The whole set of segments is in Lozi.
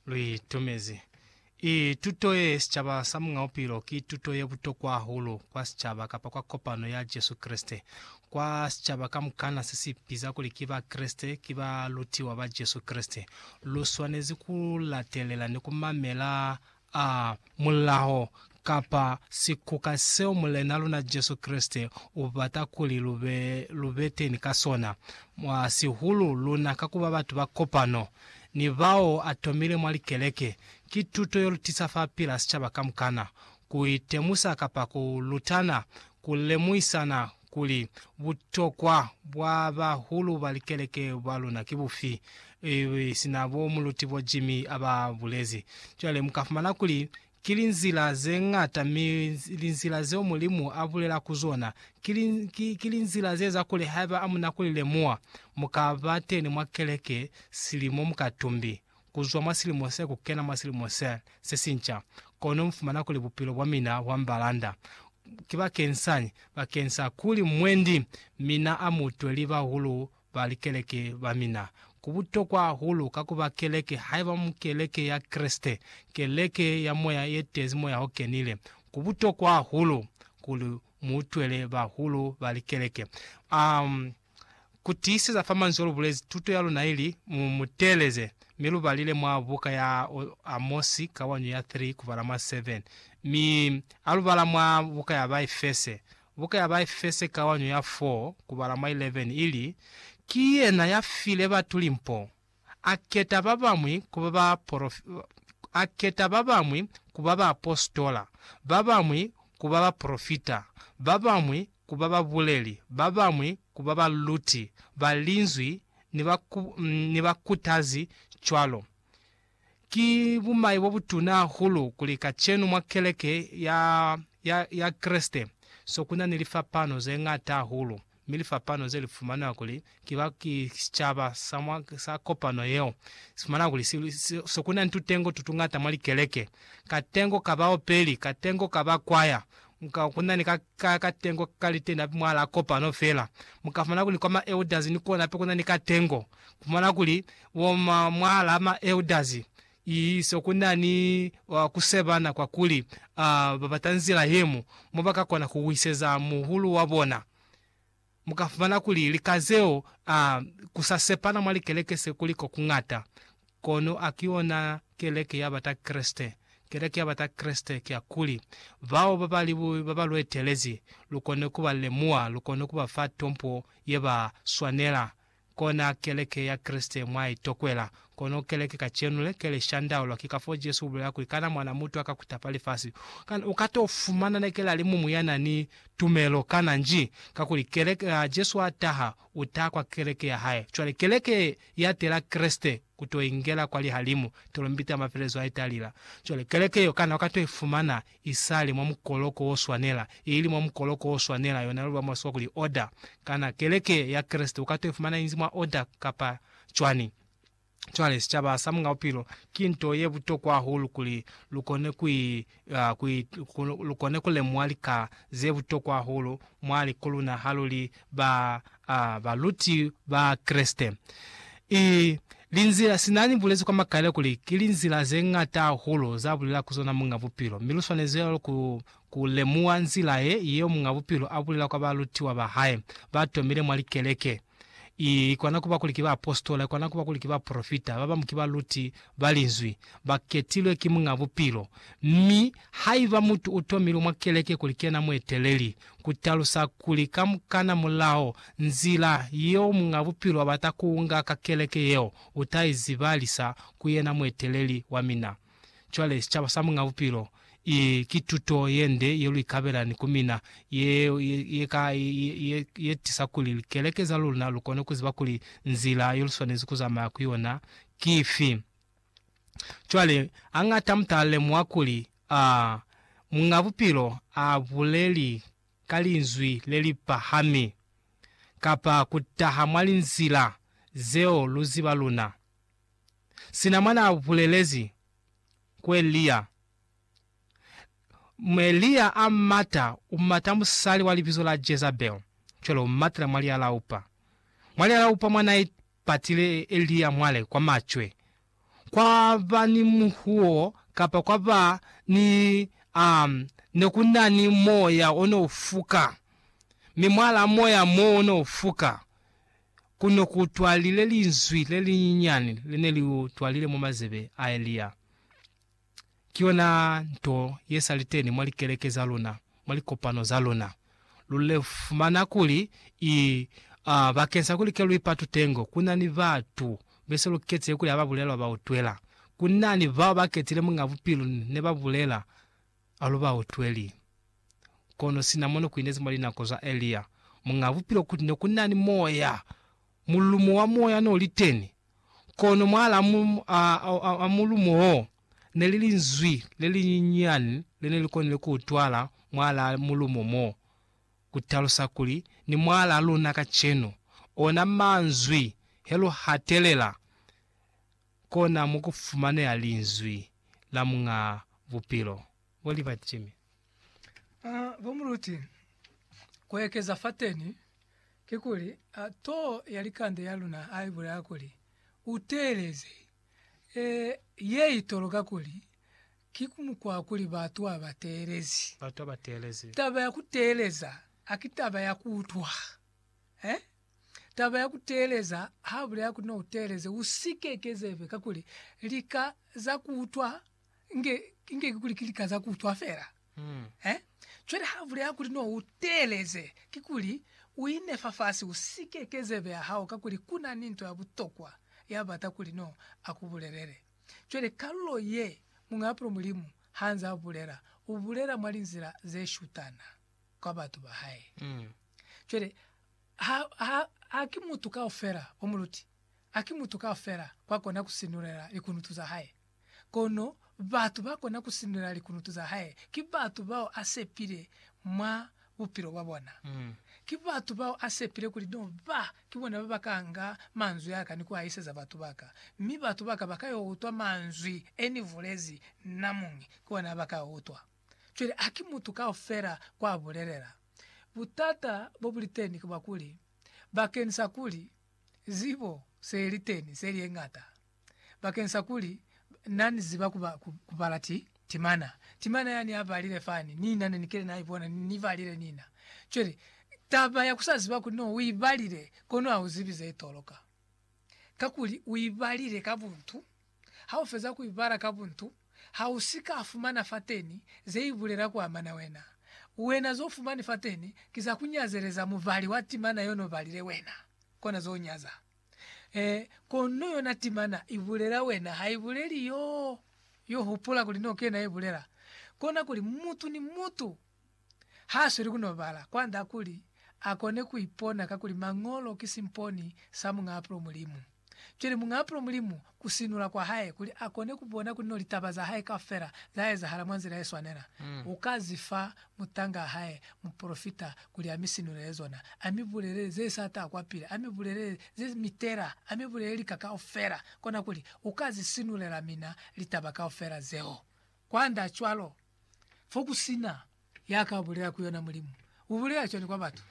Lu itumezi. I tuto ye sicaba sa Muñ'a Bupilo ki tuto ye butokwa hahulu kwa sicaba kapa kwa kopano ya Jesu Kreste. Kwa sicaba kamukana se si biza kuli ki Bakreste, ki balutiwa ba Jesu Kreste, lu swanezi ku latelela ni ku mamela A mulaho, kapa sikuka seo Mulena luna Jesu Kreste ubata kuli lube, lubeteni ka sona, mwa sihulu luna ka kuba batu ba kopano, ni bao atomile mwa likeleke, ki tuto yolutisa fa pila sicaba kamukana, kuitemusa kapa ku lutana, ku lemuhisana kuli butokwa bwa bahulu ba likeleke ba luna ki bufi, ili sina bo Muluti Bo Jimmy a ba bulezi. Cwale mu ka fumana kuli ki linzila ze ñata, mi linzila zeo Mulimu a bulela ku zona ki, ki, ki linzila ze eza kuli haiba amuna ku li lemuha, mu ka bateni mwa keleke silimo mukatumbi. ku zwa mwa silimo se ku kena mwa silimo se, se sinca. Kono mu fumana kuli bupilo bwa mina bwa mbalanda. Ki bakensañi? Bakeng sa kuli mwendi mina a mu twe li bahulu ba likeleke ba mina. Ku butokwa hahulu ka ku ba keleke, haiba mu keleke ya Kreste, keleke ya moya ye tezi Moya o Kenile, ku butokwa hahulu kuli mu utwele bahulu ba likeleke. Um. Ku tiiseza fa manzwi o lu bulezi, tuto ya luna ili, Mu mu teeleze. Mi lu balile mwa buka ya Amosi, kawanyo ya 3 kubala mwa 7. Mi ha lu bala mwa buka ya Baefese, buka ya Baefese kawanyo ya 4 kubala mwa 11, ili, Ki yena ya file batu limpo, A keta ba bamwi ku ba baporof-, A keta ba bamwi ku ba baapositola, ba bamwi ku ba bapolofita, ba bamwi ku ba babuleli, ba bamwi ku ba baluti ba Linzwi ni ba ku, ni bakutazi, cwalo. Ki bumai bo butuna hahulu kuli kacenu mwa keleke ya, ya, ya Kreste, so ku na ni lifapano ze ñata hahulu. mi lifapano ze li fumana kuli ki ba ki sicaba sa mwa sa kopano yeo, si fumana kuli si, si, se ku na ni tutengo tu tungata mwa likeleke, katengo ka baopeli, katengo ka ba kwaya, ka, ku na ni ka, ka, katengo ka liteni hape mwahalaa kopano fela. Mu ka fumana kuli kwa ma elders ni kona hape ku na ni katengo. Ku fumana kuli, bo ma, mwahalaa ma elders, Iso ku na ni ku sebana kwa kuli ba bata nzila ye mu mo ba ka kona ku wiseza muhulu wa bona. Mu ka fumana kuli lika zeo ku sa sepana mwa likeleke se kuli ko ku ñata. Kono a ki yona keleke ya bata Kreste. Keleke ya bata Kreste ki ya kuli bao ba ba li ba ba lu etelezi lu kone ku ba lemuha, lu kone ku ba fa tompo ye ba swanela. Kona keleke ya Kreste mwa i tokwela. Kono keleke kacenu le, ke li shandaulwa. Ki kafoo Jesu u bulela kuli, Kana Mwana mutu aka kutapa lifasi? Kana u ka to fumana na keli alimumu ya na ni tumelo? Kana nji. Kakuli keleke, ha Jesu a taha, u taha kwa keleke ya hae. Cwale keleke ye, ya tela Kreste ku to ingela kwa lihalimu, tolombita ya mafelelezo ha i talila. Cwale keleke yeo, kana u ka to i fumana Isale mwa mukoloko wo swanela, ili mwa mukoloko wo swanela, yona luli ba mwa Siwa kuli order. Kana Keleke ya Kreste uka to ifumana inzi mwa order kapa cwani? Cwale, sicaba sa Mung'a Bupilo, ki nto ye butokwa hahulu kuli lu kone ku i, ku i, ku lu kone ku lemuha lika ze butokwa hahulu mwa likoluna ha lu li ba a baluti ba Kreste. I linzila, sina ni bulezi kwa makaile kuli ki linzila ze ñata hahulu za bulela ku zona Muñ'a Bupilo, mi lu swanezi cwalo ku, ku lemuha nzila ye, yeo Muñ'a Bupilo a bulela kwa balutiwa ba hae ba tomile mwa likeleke. I, i kona ku ba kuli ki baapositola, i kona ku ba kuli ki baprofita, ba bañwi ki baluti ba Linzwi, ba ketilwe ki Muñ'a Bupilo. Mi, haiba mutu u tomilwe mwa keleke kuli ki yena mueteleli, ku talusa kuli kamukana mulaho nzila yeo Muñ'a Bupilo abata kuunga ka keleke yeo, uta i zibalisa ku yena mueteleli wa mina. Cwale, sicaba sa Muñ'a Bupilo, i, ki tuto yende ye lu ikabela ni ku mina, ye, ye, ye ka, ye, ye, ye tisa kuli likeleke za luna lu kone ku ziba kuli nzila yo lu swanezi ku zamaya ku yona ki ifi. Cwale, hañata muta lemuha kuli, a, Muñ'a Bupilo a buleli ka linzwi le li pahami, kapa ku taha mwa linzila zeo lu ziba luna. Sina mwa n'a bulelezi ku Elia, M. Elia a mata, u mata musali wa libizo la Jezabel, cwale u matela mwa lialaupa. Mwa lialaupa mwa n'a patile Elia mwale kwa macwe, kwa ba ni muhuo kapa kwa ba ni, a ne ku na ni moya o ne u fuka, mi mwalaa moya mo o ne u fuka, ku ne ku twalile linzwi le linyinyani le ne li twalile mwa mazebe a Elia. Ki yona nto ye sa li teni mwa likeleke za luna, mwa likopano za luna. Lu fumana kuli i, a, bakeng sa kuli ke lu ipa tutengo, ku na ni batu be se lu ketize kuli ha ba bulelwa ba utwela. Ku na ni bao ba ketile Muñ'a Bupilu ne ba bulela, a lu ba utweli. Kono sina mono ku inezi mwa linako za Elia, Muñ'a Bupilu kuti ne ku na ni Moya, mulumo wa Moya n'o li teni. Kono mwahala a mulumo wo, ne li linzwi le linyinyani le ne li konile ku utwala mwahala mulumo mo, ku talusa kuli, ni mwahala luna kacenu. Ona manzwi, he lu hatelela, kona mo ku fumaneha Linzwi la Muñaa Bupilo. Bo Liberty Jimmy. Bo muluti, ku ekeza fateni, kikuli too ya likande ya luna ha ibulela kuli, Uteeleze. Ye itoloka kuli, ki mukwa wa kuli batu ha ba teelezi. Batu ha ba teelezi. Taba ya kuteeleza haki taba ya kuutwa. Taba ya kuteeleza, ha bulela kuli nou teeleze, usike ekeza ibe, kakuli lika za kuutwa. Inge, inge kikuli ki lika za kuutwa fela. Mm. Eh? Cwale ha bulela kuli no u teeleze, kikuli u ine fafasi u si keke zebe ya hao kakuli ku na ni nto ya butokwa ya bata kuli no a ku bulelele. Cwale kalulo ye muñwi ya pula Mulimu ha nzaa bulela, u bulela mwa linzila ze shutana kwa batu ba hae. Mm. Cwale ha, ha, ha ki mutu kaufela, bomuluti, ha ki mutu kaufela kwa kona ku sinulela likunutu za hae. Kono batu ba kona ku sindulela likunutu za hae ki batu bao a sepile mwa bupilo bwa bona. Ki batu bao a sepile kuli no ba ki bona ba ba ka nga manzwi a ka ni ku a iseza batu ba ka. Mi batu ba ka ba ka yo utwa manzwi e ni bulezi nna muñi, ki ona ba ka a utwa. Cwale haki mutu kaufela kwa bulelela. Butata bo bu li teni ki bwa kuli, bakeni sa kuli zibo se li teni se li ye ñata, bakeng sa kuli Na ni ziba ku, ku, ku bala ti, timana. Timana yani a balile fani, nina ne ni kile na ibona, ni, ni balile nina. Cwale, taba ya ku sa ziba kuli no u i balile, kono ha u zibi ze i toloka. Kakuli u i balile ka buntu, ha u feza ku i bala ka buntu, ha u si ka fumana fateni ze i bulela ku amana wena. Wena zo fumani fateni ki za ku nyazeleza mubali wa timana yo no balile wena, kona zo nyaza. Ee, kono yona timana ibulela wena, haibuleli yo. Yo hupula kuli no kena ibulela. Kona kuli mutu ni mutu hasweli kuno bala kwanda kuli akone kuipona kakuli Mañolo ki simponi sa Muñaapulo Mulimu. Cwale Muñaapulo Mulimu ku sinula kwa hae kuli a kone ku bona kuli no litaba za hae kaufela za ezahala mwa nzila ye swanela, u ka zi fa mutangaa hae mupolofita kuli a mi sinulele zona, a mi bulelele ze sa ta kwapili, a mi bulelele ze mi tela, a mi bulelele lika kaufela, kona kuli u ka zi sinulela mina litaba kaufela zeo. Kwand'a cwalo, fo ku si na ya ka bulela ku yona Mulimu, u bulela cwani kwa batu?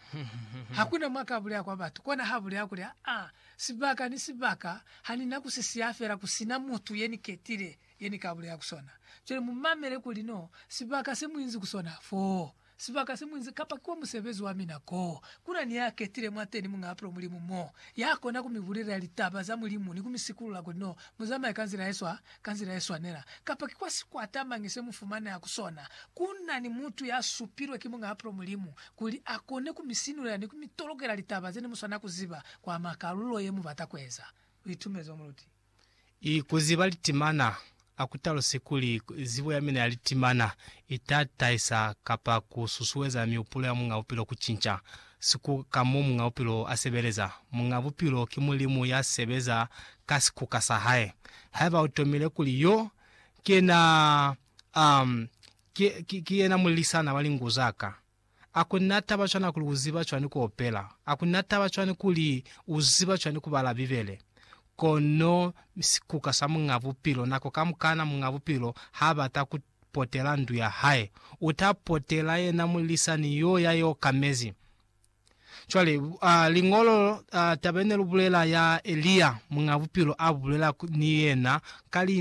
Ha ku na mwa ka bulela kwa batu, kona h'a bulela kuli, Aa, sibaka ni sibaka ha ni na ku si siya fela ku si na mutu ye ni ketile ye ni ka bulela ku sona. Cwale mu mamele kuli no sibaka se mu inzi ku sona foo, Sibaka se muinzi kapa ki kwa musebezi wa mina ko kuna ni ya ketile mwateni muñaa pilo Mulimu mo ya kona ku mi bulelela litaba za Mulimu ni ku mi sikulula kuli no mu zamaye ka nzila ye swa ka nzila ye swanela. Kapa ki kwa sikwata mañi se mu fumaneha ku sona, ku na ni mutu ya supilwe ki muñaa pilo Mulimu kuli a kone ku mi sinulela ni ku mi tolokela litaba ze ne mu swanela ku ziba kwa makalulo ye mu bata ku eza luitumezo muluti. I kuziba litimana, A ku talusi kuli zibo ya mina ya litimana i ta tahisa kapa ku susueza mihupulo ya Muñ'a Bupilo ku cinca sikuka ka mo Muñ'a Bupilo a sebeleza. Muñ'a Bupilo ki Mulimu ya sebeza ka sikuka sa hae. Haiba u tomile kuli yo ki yena, um, ki, ki, ki yena mulilisana wa lingu za ka, A kuli na taba cwani kuli u ziba cwani ku opela? A kuli na taba cwani kuli u ziba cwani ku bala Bibele? Kono sikuka sa Muñ'a Bupilo, nako kamukana Muñ'a Bupilo h'a bata ku potela ndu ya hae, u ta potela yena mulisani y'o ya i okamezi. Cwale, a, Liñolo, a, taba ye ne lu bulela ya Elia, Muñ'a Bupilo a bulela ni yena ka